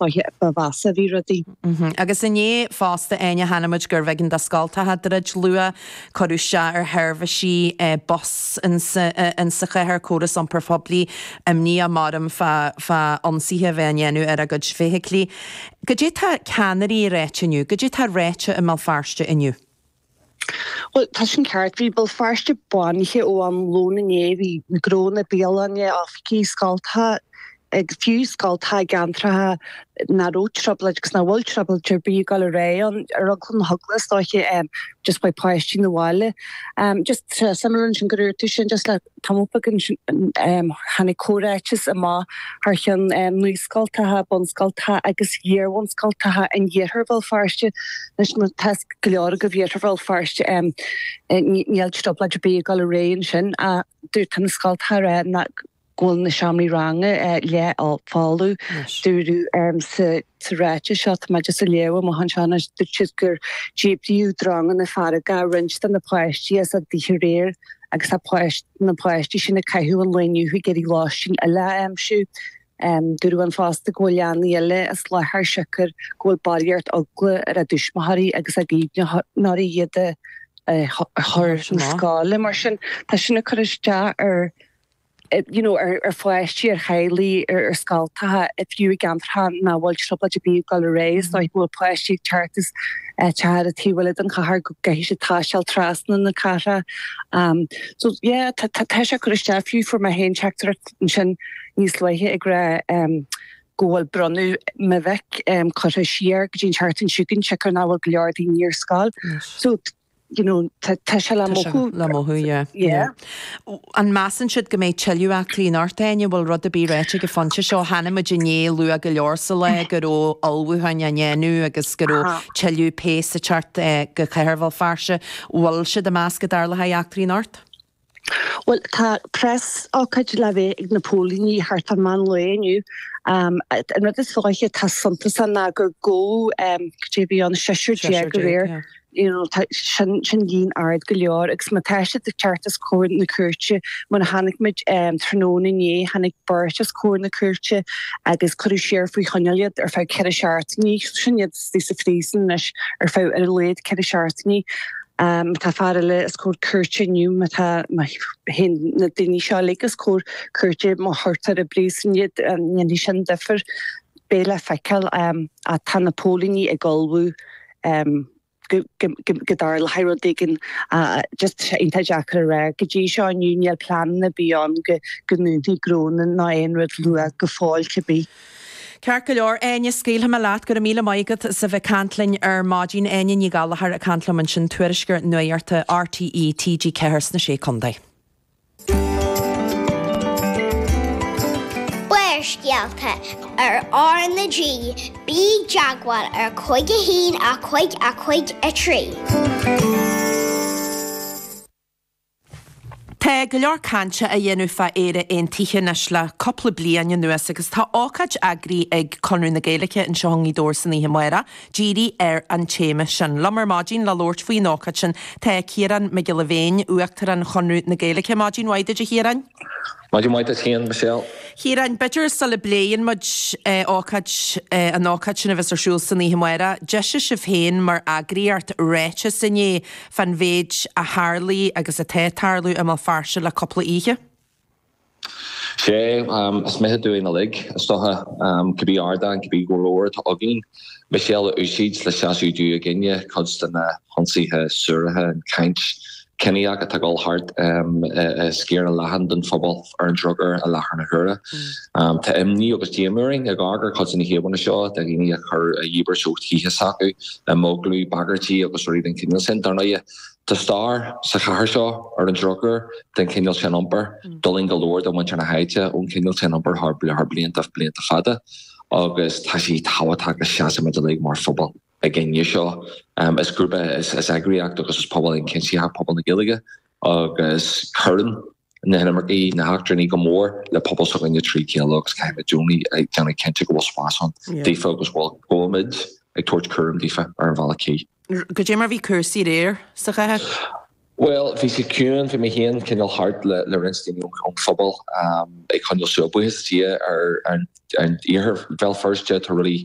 áithe ba mheasa a bhí rudaí. Agus inné fosta Áine chan muid gurbh éigean do scoltacha druid luath cuireadh isteach ar sheirbhisí bus in sa chathair, córas iompar phoiblí imní á marú fá ionsaithe a bheith á ndéanamh ar a gcuid feithiclí. Goidé tá ceannairí a ráit inniu? Goidé tá ráite i mBéal Feirste inniu? Bhuel, tá sin ceart. Bhí Béal Feirste bánaithe ó am lón inné. Bhí gnónna bialanna, oifigí, scoltacha, fiú scoltacha i gceantracha nach raibh trioblóid agus nach bhfuil trioblóid ar bith ag dul ar aghaidh ann, ar eagla na heagla is dóiche, just beidh páistí na bhaile just suimiúil ansin gur iarr tú sin just le. Tamall beag ansin tháinig comhráiteas amach thar cheann naíscoltacha, bunscoltacha agus iarbhunscoltacha in Iarthar Bhéal Feirste níos mó go leor agaibh Iarthar Bhéal Feirste níl trioblóid ar bith ag dul ar aghaidh ansin ach dúirt na scoltacha a rá nach go bhfuil na seomraí ranga leathfholamh dúradh sa Sa ráiteas seo, tá mé just ag léamh amach anseo anois, dúirt siad gur dhíbir dronganna feargacha roinnt de na páistí as a dtithe aréir agus tá na páistí sin ag caitheamh an lae inniu ag iarraidh lóistín eile a aimsiú. Dúradh ann fosta go bhfuil leanaí eile as láthair siocair go bhfuil barraíocht eagla ar a dtuismitheoirí agus a gcaomhnóirí iad a chur chun na scoile. Mar sin, tá sin ag cur isteach ar. you know ar pháistí, ar theaghlaigh, ar scoltacha i fiú i gceantracha nach bhfuil trioblóid ar bith ag dul ar aghaidh is dóigh go bhfuil páistí ag teacht as achan taobh eile den chathair go gcaithfidh siad taisteal trasna na cathrach so yeah tá tá tá sé cur isteach fiú fuair mé féin teachtaireacht ansin níos luaithe ag rá go bhfuil bronnadh mo mhic curtha siar go dtí an tseachtain seo chugainn siocair nach bhfuil go leor daoine ar scoil so you know, tá sé le mothú. le mothú, yeah, yeah. An measann siad go mbeidh tuilleadh eachtraí anocht, Éanna? An bhfuil rud ar bith ráite ag an phointe seo? Chan muid inné luath go leor sa lá go raibh ullmhúcháin á ndéanamh agus go raibh tuilleadh péas ag teacht go Cathair Bhéal Feirste. Bhfuil siad a' meas go dtarlóidh eachtraí anocht? Bhuel, tá preasócáid le bheith ag na póilíní thart ar meán lae inniu. An rud is dóiche atá suntasach ann ná gur gabhadh, go dtí bhí ann, seisear déag aréir. You know, tá, sin, sin líon ard go leor agus má tá siad ag teacht os comhair na cúirte, mar a chonaic muid tráthnóna inné, tháinig beirt os comhair na cúirte agus cuireadh siar faoi choinneáil iad ar feadh ceithre seachtainí. Sin iad istigh sa phríosún anois ar feadh ar a laghad ceithre seachtainí. Má tá fear eile os comhair cúirte inniu, má tá, má théann na daoine seo uilig os comhair cúirte, má chuirtear i bpríosún iad, an ndéanfaidh sin difear? Beidh le feiceáil. Ach tá na póilíní ag ullmhú go dtarlóidh rud éigin. Just iontach deacair a rá. Go dtí seo inniu níl pleananna ar bith ann go ndúnfaí gnónna ná aon rud luath go fóill cibé. Ceart go leor, Áine, scaoilfidh mé leat. Go raibh míle maith agat as a bheith ag caint linn ar maidin. Áine Ní Ghallachair ag caint liom ansin, tuairisceoir nuachta RTÉ, TG4 sna Sé Contae. Barrscéalta ar R na G bí i dteagmháil ar cúig a haon, a cúig, a cúig a trí. Tá go leor cainte á dhéanamh fá Éire Aontaithe anois le cúpla bliain anuas agus tá ócáid eagraithe ag Conradh na Gaeilge anseo i nGaoth Dobhair san oíche amáireach dírithe ar an téama sin. Liom ar maidin le labhairt faoin ócáid sin tá Ciarán Mac Giolla Bhéin, Uachtarán Chonradh na Gaeilge. Maidin mhaith duit, a Chiaráin. Maidin mhaith duit féin, Michelle. Ciaráin, b'fhéidir sula bpléann muid ócáid, an ócáid sin a bheas ar siúl san oíche amárach, d'eisigh sibh féin mar eagraíocht ráiteas inné fán mhéid a tharlaigh agus atá ag tarlú i mBéal Feirste le cúpla oíche. Sea, is mithid dúinn uilig, is dócha, cibé ardán, cibé glór atá againn, Michelle a úsáid le seasamh dubh i gcoinne cuid de na hionsaithe suaracha, an chaint ciníoch atá ag dul thart i sciar leathan den phobal ar an drochuair i láthair na huaire. Tá imní agus díomá orainn ag amharc ar chuid de na híomhánna seo de dhaoine a chur a dhíbirt ó thithe s'acu le himeaglú, bagairtí agus rudaí den chineál sin. Dar ndóigh, tá stair sa chathair seo ar an drochuair den chineál sin iompair. D'fhulaing go leor de mhuintir na háite ón gcineál sin iompair thar blianta fada agus tá sé tábhachtach go seasaimid uilig mar phobal, I gcoinne seo, is grúpa, is eagraíocht agus is pobal ionchuimsitheach pobal na Gaeilge agus cuireann na hinimircigh, na heachtrannaigh go mór le pobal s'againne trí chéile agus caithfimid i gcónaí a dhéanamh cinnte go bhfuil spás ann daofa agus go bhfuilimid ag tabhairt cúram daofa ar an bhealach cuí. Cad é mar bhí cúrsaí aréir sa chathair? Bhuel, bhí sé ciúin, bhí mé féin cineál thart le roinnt daoine ón phobal ag coinneáil súil, buíochas le Dia, in iarthar Bhéal Feirste tá rudaí,